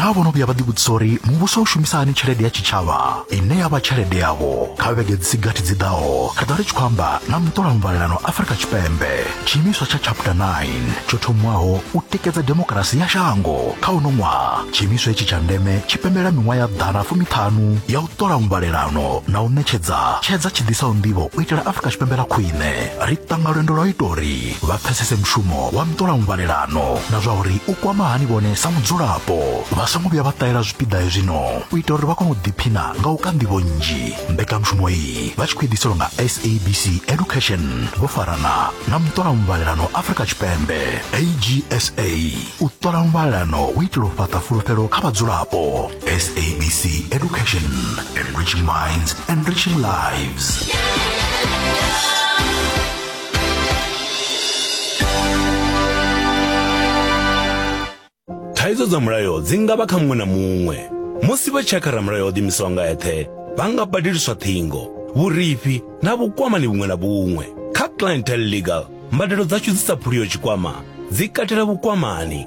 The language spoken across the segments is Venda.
naa vhono vhuya vha ḓivhudzisa uri muvhuso u shumisa hani tshelede ya tshitshavha ine ya vha tshelede yavho kha vhege dzi si gathi dzi ḓaho ri ḓo ri tshi khou amba na muṱola muvhalelano afurika tshipembe tshiimiswa tsha chapter 9 tsho thomiwaho u tikedza demokirasi ya shango kha uno ṅwaha tshiimiswa hetshi tsha ndeme tshi pembela miṅwaha ya ḓana fumiṱhanu ya u ṱola muvhalelano na u ṋetshedza tshedza tshi ḓisaho nḓivho u itela afurika tshipembe ḽa khwine ri ṱanga lwendo lwa u ita uri vha pfesese mushumo wa ntola muvhalelano na zwa uri u kwama hani vhone sa mudzulapo vha songo vhuya vha ṱahela zwipiḓa hezwino u ita uri vha kone u ḓiphina nga u ka nḓivho nnzhi mbekanyamushumo iyi vha tshi khou ḓiselwa nga sabc education vho farana na muṱola muvhalelano afrika tshipembe agsa u ṱola muvhalelano u itela u fhaṱa fulufhelo kha vhadzulapo sabc education enriching minds enriching lives yeah. thaidzo dza mulayo dzi nga vha kha muṅwe na muṅwe musi vha tshakha ramulayo o ḓimisaho nga eṱhe vha nga badeliswa ṱhingo vhurifhi na vhukwamani vhuṅwe na vhuṅwe kha clientele legal mbadelo dzashu dzi sa phuliyo tshikwama dzi katela vhukwamani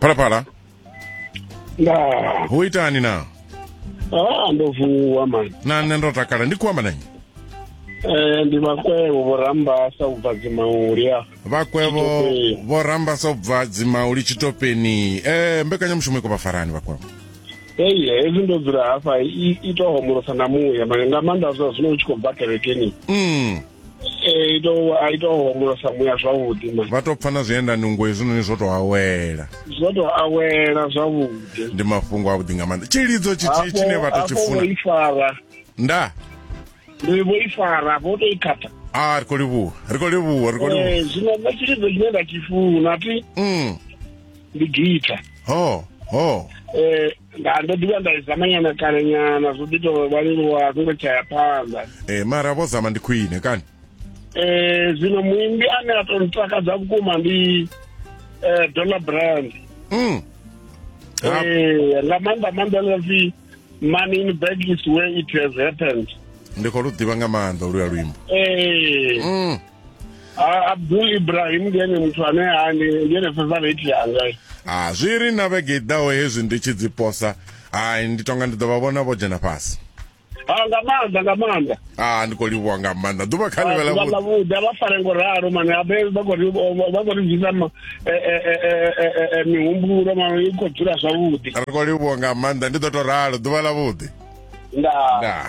phalaphala nda ho itani na ah ndo vuwa mani na nṋe ndo takala ndi khou amba nanyi eh ndi vhakwevho vhorambasa ubva dzimauli a vhakwevho Tshitopeni. vho rambasa ubva dzimauli tshitopeni eh mbekanyamushumo i khou vha farani vhakwevho hei hezwi ndo dzula hafha i to homolosa na muya mane nga maanḓa zwa zwino u tshi khou bva kerekeni mm. e, i to a i to homolosa muya zwavhuḓi ma vha to pfa na zwienda nungo hezwinoni zwo to awela zwo to awela zwavhuḓi ndi mafhungo avhuḓi nga maanḓa tshilidzo tshithihi tshine vha to tshi funa ifara nda ndi vho ifara vho to i khatha a ah, ri khou livhuwa ri khou livhuwa ri khou livhuwa eh, zwino nṋe tshilidzo tshine nda tshi funa ti mm. ndi gita ho ho eh nda ndo ḓivha nda zama nyana kale nyana zwo ḓi tou vha leluwa zwo ngo tshaya phanḓa eh mara vho zama ndi khwine kani eh zwino muimbi ane a tou ntakadza vhukuma ndi eh Donna Brand mm eh nga maanḓa maanḓa ḽa pfi money in bag is where it has happened ndi khou lu ḓivha nga maanḓa oluya luimbo eh mm abdul ibrahim ndi ene muthu ane ani ndi ene favorite yanga a zwi ri na vhege i ḓaho hezwi ndi tshi dzi posa hai ndi tonga ndi ḓo vha vhona vho dzhena fhasi a nga maanḓa nga maanḓa a ndi khou livhuwa nga maanḓa ḓuvha kha ḽivhe lavhuḓi a vha fare ngo ralo mane abe vha khou ri bvisa mihumbulo mano i khou dzula zwavhuḓi ri khou livhuwa nga maanḓa ndi ḓo tou ralo ḓuvha lavhuḓi ndaa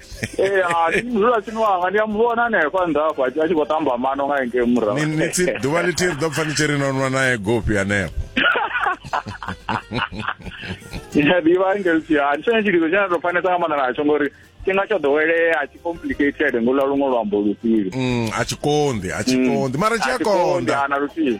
ee hai dzula tshini wanga ndi a mu vhona hanefho nnḓa afho a tshi a tshi khou tamba mano nga engei murahu Ni- ni tsi- ḓuvha ḽithihi ri ḓo pfa ni tshi ri no nwa nae gopi anefho ḓivha ngelsi ha ndi tshone tshilidzo tshine a tou fanesa nga maanḓa natsho ngori tshifhinga tsho ḓowelea a tshi complicated ngolwa luṅwe luambo lufhili Mm, a tshi konḓi a tshi konḓi mara tshi a konḓa ana lufhili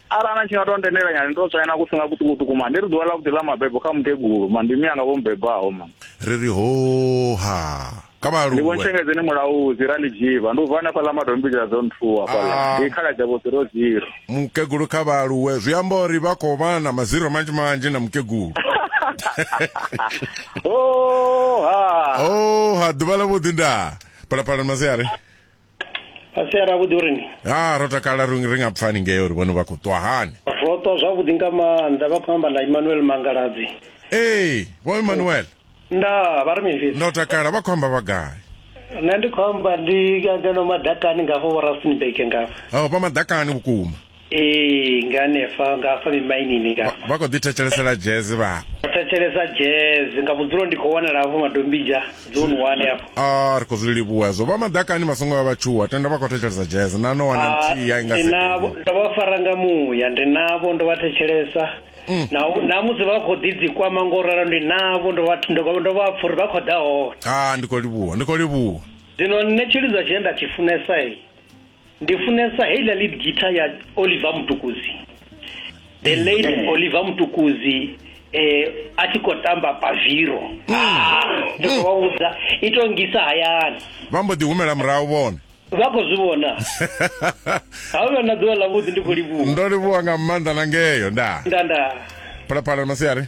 arali na tshi nga tou ndendela nyana ndo tswaina ku singa kuṱukuṱuku ma ndi ri ḓuvha ḽa vhuḓi ḽa mabebo kha mukegulu ma ndi miyanga vho mubebaho ma ri ri hoha kha ndi vho ntshengedzeni mulaudzi ra ndi dzhiva ndi u bva hanefha ḽa madombidzela dzo nthuwa fhaḽa ah. ndi khala dza vho ziro ziro mukegulu kha vhaaluwe zwi amba uri vha khou vha na maziro manzhi manzhi na mukegulu oha oha ḓuvha ḽa vhuḓi ndaa phalaphala masiari fhasi aravhuḓi uri ni ha ro takala ri nga pfani ngei uri vhone vha khou ṱwa hani ro ṱwa zwavhuḓi nga maanḓa vha khou amba na emmanuel mangaladzi ee vho emmanuel nda vha ri mini fhedzi ndo takala vha khou amba vha gai nṋe ndi khou amba ndi ngeno madakani ngafho vho rustenburg ngafho o vha madakani vhukuma ee nga hanefha nga hafha mimainini nga vha khou ḓi thetshelesela jazz vha thetshelesa jazz nga vhudzulo ndi khou wanala hafho madombija dzone one hafho a ah, ri khou zwi livhuwa hezwo vha madakani vha songo vha vha tshuwa tenda vha khou thetshelesa jazz na no wana ah, nthihi ya inga navho ndo vha fara nga muya ndi navho ndo vha thetshelesa mm. na na musi vha khou ḓi dzikwama ngo ralo ndi navho ndo vha ndo vha pfha uri vha khou ḓa hone a ah, ndi khou livhuwa ndi khou livhuwa zwino nṋe tshilidzwa tshine nda tshi funesa ndi funesa heiḽa lead guitar ya oliver mutukuzi the mm. late mm. oliver mutukuzi eh a tshi khou tamba paviro mm. ah, ndi khou vha vhudza i to ngisa hayani vha mbo ḓi humela murahu vhone vha khou zwi vhona ha u vha na ḓuvha ḽavhuḓi ndi khou livhuwa ndo livhuwa nga maanḓa na ngeyo nda nda nda phalaphala masiari